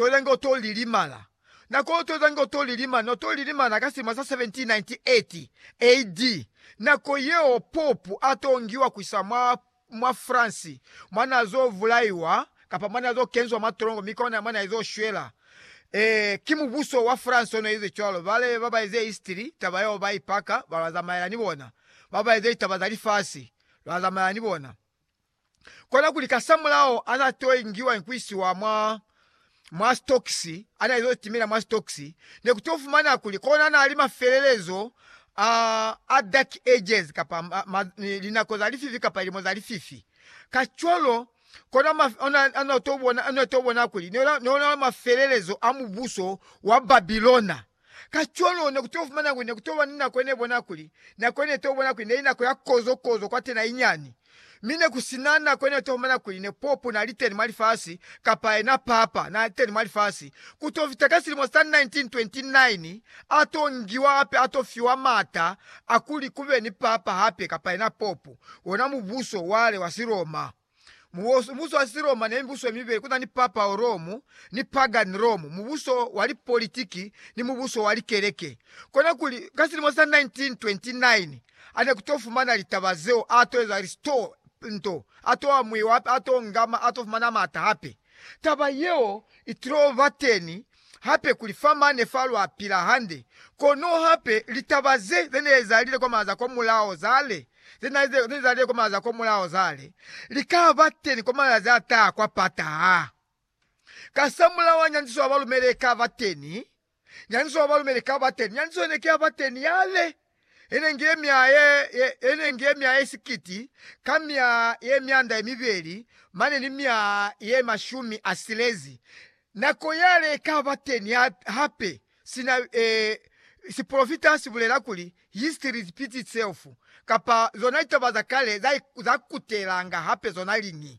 Tole ngo to lilimala. Na kolotweza ngo to lilimala, no to lilimala ka silimo sa 1798 AD, nako yeo Popu a tongiwa kuisa mwa, mwa France, mwa na zo vulaiwa, kapa mwa na zo kenzwa mwa tolongo, mi kona mwa na izo shwela. Ee, ki mubuso wa France ono ize cwalo. Bale ba ba eze history, taba yeo ba ipaka, ba lwa zamaela ni bona. Ba ba eze litaba za lifasi, lwa zamaela ni bona. Kona kuli kasamulaho ana to ingiwa ni kuisiwa mwa mwa stokisi, ana izo timela mwa stokisi, ne ku to fumana kuli kona nali mafelelezo a a dark ages kapa ma, ma, linako za lififi kapa lilimo za lififi. Kacwalo kona ma, ona, ona to bona, ona to bona kuli ne ona mafelelezo a mubuso wa Babilona. Kacwalo ne ku to fumana kuli ne ku to ba ni nako ye ne bona kuli, nako ye ne to bona kuli ne li nako ya kozo-kozo kwatena inyani. Mi ne ku si na nako ye ne to fumana kuli ne popu n'a li teni mwa lifasi, kapa yena papa n'a li teni mwa lifasi. Ku to fita ka silimo sa 1929, a to ngiwa hape a to fiwa m'ata a kuli ku be ni papa hape kapa yena popu, wona mubuso wale wa Siroma. Mubuso wa Siroma ne mibuso yemibeli, kuna ni Papal Rome ni Pagan Rome, mubuso wa lipolitiki ni mubuso wa likeleke. Kona kuli, ka silimo sa 1929, ane kuto fumana litaba zeo, ato eza listo nto, ato amuiwa hape, ato ngama, ato fumana maata hape. Taba yeo itulo bateni hape kuli fa mane fa lwa pila hande. Kono hape, litaba ze ze ne za lile kwa maaza kwa mulaho zale, ze na ze ne za lile kwa maaza kwa mulaho zale, li ka ba teni kwa malazi a taha kwa pataha. Kasamulaho ha nyandiso ya balumeli e ka ba teni, nyandiso ya balumeli i ka ba teni, nyandiso ye ne ki ya ba teni yale. ine nge mya ye, ye, ine nge mya ye sikiti ka mya ye myanda ye mibeli mane ni mya ye mashumi a silezi, nako yale ika ba teni ha, hape, sina, eh, sipolofita si bulela kuli, History repeats itself, kapa zona litaba za kale za, za kutelanga hape zona liñi.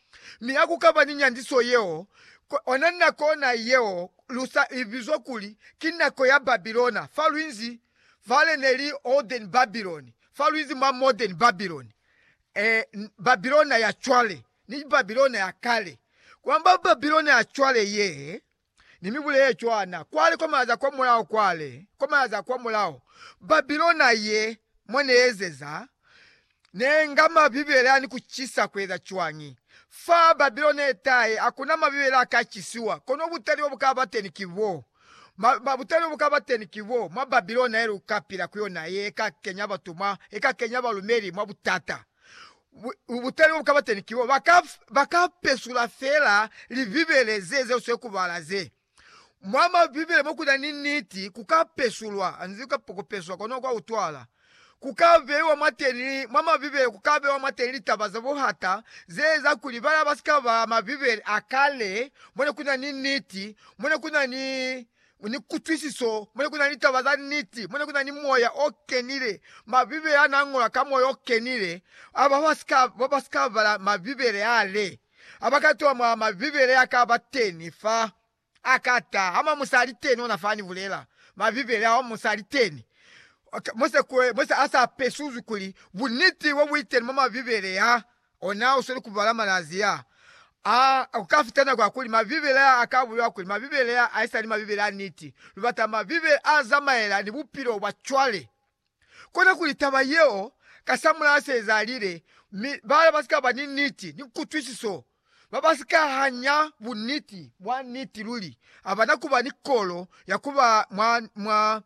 Mi ha ku ka ba ni nyandiso yeo, ona nako na yeo lu sa i bizwa kuli ki nako ya Babilona fa luinzi fale ne li Olden Babylon, fa luinzi mwa Modern Babylon, ee, Babilona ya cwale ni Babilona ya kale, ku amba Babilona ya cwale ye Ni mi bulele cwana, kwale kwa malazi a kwa mulaho, kwale kwa malazi a kwa mulaho, Babilona ye mwa ne ezeza, ne nga Mabibele a ni ku cisa ku eza cwañi? Fa Babilona ye tahe, ha ku na Mabibele a ka cisiwa, kono butali bo bu ka ba teni ki bo, ma, butali bo bu ka ba teni ki bo, mwa Babilona ye lu ka pila ku yona, ye ka kenya batu mwa, ye ka kenya balumeli mwa butata. bu, butali bo bu ka ba teni ki bo, ba ka, ba ka pesula fela Libibele ze, zeo swe ku bala ze. Mwa Mabibele mo ku na ni niti, ku ka pesulwa, anzi ku ka peswa kono kwa utwala. Ku ka beiwa mwateni, mwa Mabibele ku ka beiwa mwateni litaba za buhata ze eza kuli bala ba si ka bala Mabibele a kale mo ne ku na ni niti, mo ne ku na ni ni kutwisiso, mo ne ku na ni taba za niti, mo ne ku na ni Moya o Kenile, Mabibele a n'a ñolwa ka Moya o Kenile. Aba ba ba si ka bala Mabibele ale, ha ba ka tola mwa Mabibele a ka ba teni fa, a ka ta, Ha mwa musali teni ona fa ni bulela, Mabibele a mwa musali teni, mo se a sa pesuzwi kuli buniti bo bu li teni mwa Mabibele a. ona usweli kubala malazi ya a kukafita nako ya kuli Mabibele ya a ka bulelwa kuli Mabibele ya a isali Mabibele a niti. Lubata Mabibele a zamaela ni bupilo bwa cwale. Kona kuli taba yeo kasamulaho se ezalile, mi bala ba si ka ba ni niti ni kutwisiso, ba ba si ka hanya buniti bwa niti luli, abana kuba ni kolo ya kuba mwa, mwa,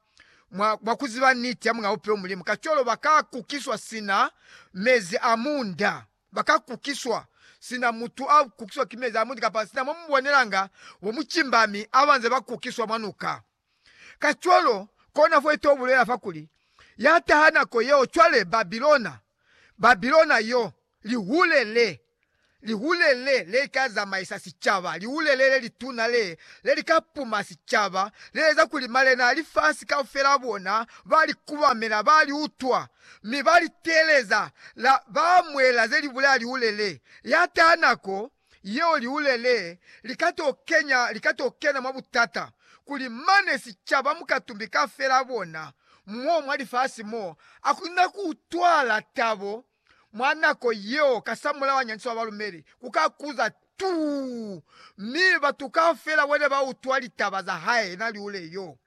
Mwa, mwa kuziba niti ya Mulao peo Mulimu, kacwalo ba ka kukiswa sina mezi a munda. Ba ka kukiswa, sina mutu a kukiswa ki mezi a munda, kapa sina mo mubonelanga bo mucimba mi abanze ba kukiswa mwa nuka. Kacwalo, kona fo ito bulela fa kuli, Ya taha nako yeo cwale, Babilona, Babilona yo, Lihule le, lihule le, le ka zamaisa sicaba, lihule le le lituna le, le li ka puma sicaba, le eza kuli malena a lifasi kaufela a bona ba li kubamela, ba li utwa, mi ba li teeleza, la ba amuela ze li bulela lihule le. Ya taha nako yeo lihule le li ka to kenya, li ka to kena mwa butata, kuli mane sicaba mukatumbi kaufela a bona, mo mwa lifasi mo, a ku na ku utwala tabo mwa nako yeo kasamulaho anyandiswa balumeli ku ka kuza tuu, mi batu kaufela bone ba utwa litaba za hae na liule yo,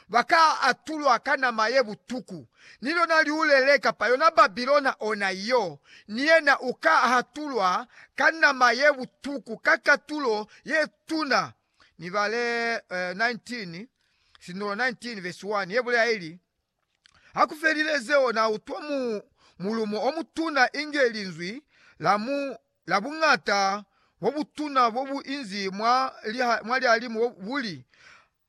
ba ka atulwa ka nama ye butuku, ni lona liule le kapa yona Babilona ona yo, ni yena u ka hatulwa ka nama ye butuku ka katulo ye tuna. Mibale 19, sinulo 19 vesi 1, ye bulela ili, Ha ku felile zeo, na utwa mu mulumo o mutuna inge linzwi la mu la buñata bo butuna bo bu inzi mwa liha, mwa lihalimu bu li,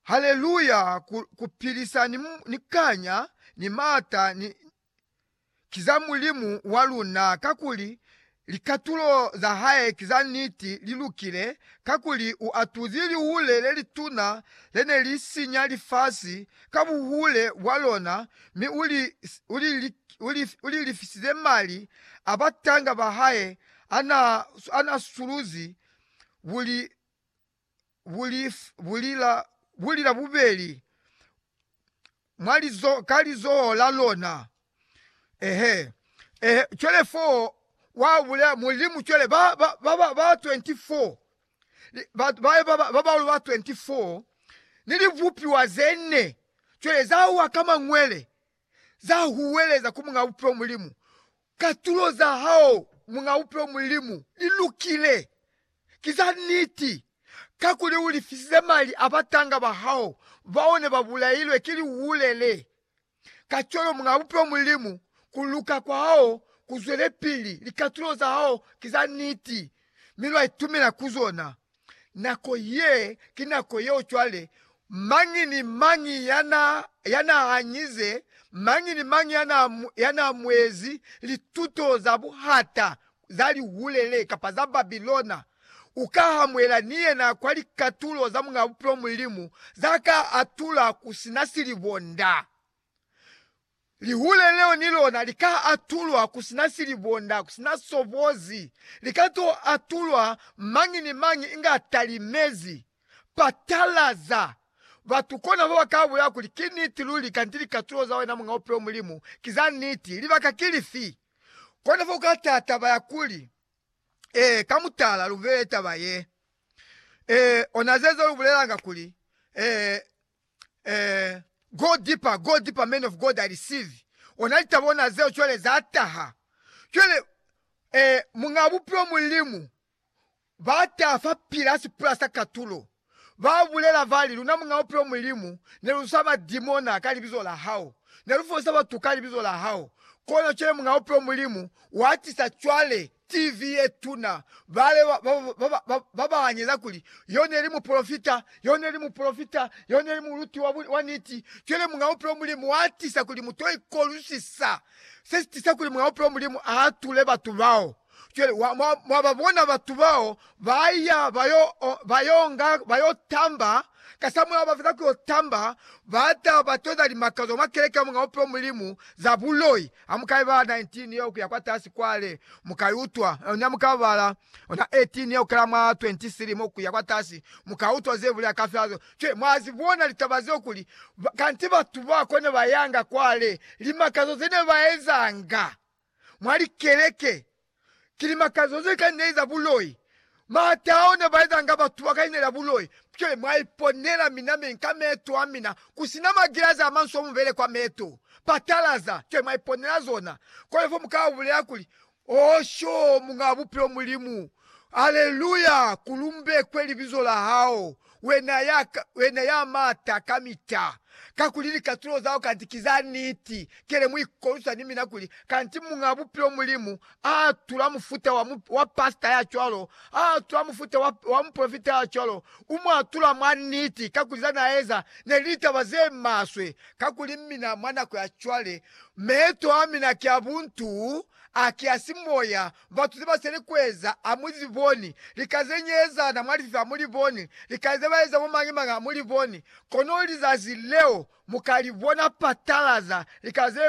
Haleluya! Ku, ku pilisa ni, ni kanya, ni maata, ni, ki za Mulimu wa luna, kakuli likatulo za hae ki za niti, li lukile, kakuli u atuzi lihule le lituna le ne li sinya lifasi ka buhule bwa lona, mi u li, u li, u li, u li lifisize mali a batanga ba hae a n'a, a n'a suluzi, bu li, bulila bubeli ka lizoho la lona. Cwale fo wa bulela Mulimu, cwale ba bahulu ba 24 ni libupiwa ze ne cwale za wa ka mangwele za huweleza ku Muñ'a Bupilo Mulimu, katulo za hao Muñ'a Bupilo Mulimu, li lukile. Ki za niti, kakuli u lifisize mali a batanga ba hao bao ne ba bulailwe ki lihule le. Kacwalo Muñ'a Bupilo Mulimu, ku luka kwa hao ku zwelepili, likatulo za hao ki za niti, mi lwa itumela ku zona. Nako ye ki nako yeo cwale. Mañi ni mañi ya n'a hanyize, mañi ni mañi ya n'a muezi lituto za buhata za lihulele kapa za Babilona, u ka hamuela ni yena kwa likatulo za Muñ'a Bupilo Mulimu za ka atula ku si na silibonda. Lihule leo ni lona li ka atulwa ku si na silibonda, ku si na sobozi. Li ka to atulwa mañi ni mañi inge a talimezi. Patalaza! Batu kona ba ba ka bulela kuli, Ki niti luli, kanti likatulo za wena Muñ'a Bupilo Mulimu ki za niti. Libaka ki lifi? Kona fa u ka taha taba ya kuli, Ee, ka mutala, lu bulele taba ye. Ee, ona zeza lu bulelanga kuli, Ee, eh, go deeper, go deeper man of God I receive ona litaba ona zeo cwale za taha cwale eh, Muñaa Bupilo Mulimu ba taha fa pila ha sipula sa katulo ba bulela bali, Luna Muñaa Bupilo Mulimu ne lu sa ba dimona ka libizo la hao, ne lu folisa batu ka libizo la hao, kono cwale Muñaa Bupilo Mulimu wa tisa cwale TV ye tuna, bale ba ba anyeza kuli, Yo ne li mupolofita! Yo ne li mupolofita! Yo ne li muluti wa niti! Cwale Muñ'a Bupilo Mulimu a tisa kuli mu to ikolwisisa se si tisa kuli Muñ'a Bupilo Mulimu a atule batu bao. Cwale, mwa ba bona batu bao ba ya ba yo tamba, kasamulaho ba feza ku yo tamba, ba ta ba toza limakazo mwa keleke ya Muñ'a Bupilo Mulimu za buloi, Ha mu ka ibala 19 yeo kuya kwatasi kwale, mu ka iutwa. Ni ha mu ka bala 18 yeo kukela mwa 23 mo kuya kwatasi, mu ka utwa ze bulela ka fyazo. Cwale mwa zi bona litaba zeo kuli, kanti batu ba kwa ne ba yanga kwale, limakazo ze ne ba ezanga mwa likeleke Ki limakazo ze ka ineliza buloi. Maata ao ne ba ezanga batu ba ka inelela buloi. Cwale mwa iponela mina mi nka meeto a mina, ku si na magilazi a manso mu bele kwa meeto, patalaza, cwale mwa iponela zona. Cwale fo mu ka bulela kuli, Oh, sho, Muñaa Bupilo Mulimu, aleluya, ku lumbekwe Libizo la Hao, Wena ya, wena ya mata kamita, kakuli likatulo zao kanti ki za niti, kele mu ikolwisa ni mina kuli, kanti Muñaa Bupilo Mulimu a atula mufuta wa, wa pasita ya cwalo, a atula mufuta wa, wa mupolofita ya cwalo, u mu atula mwa niti, kakuli za na eza ne li litaba ze maswe. Kakuli mina mwa nako ya cwale, meeto a mina ki a buntu, a ki a simoya, Batu zebasele kueza amuliboni, lika zenyeezana mwalififi amuliboni, lika zebaeza bomañimañi amuliboni, kono lizazi leo mukalibona patalaza lika ze.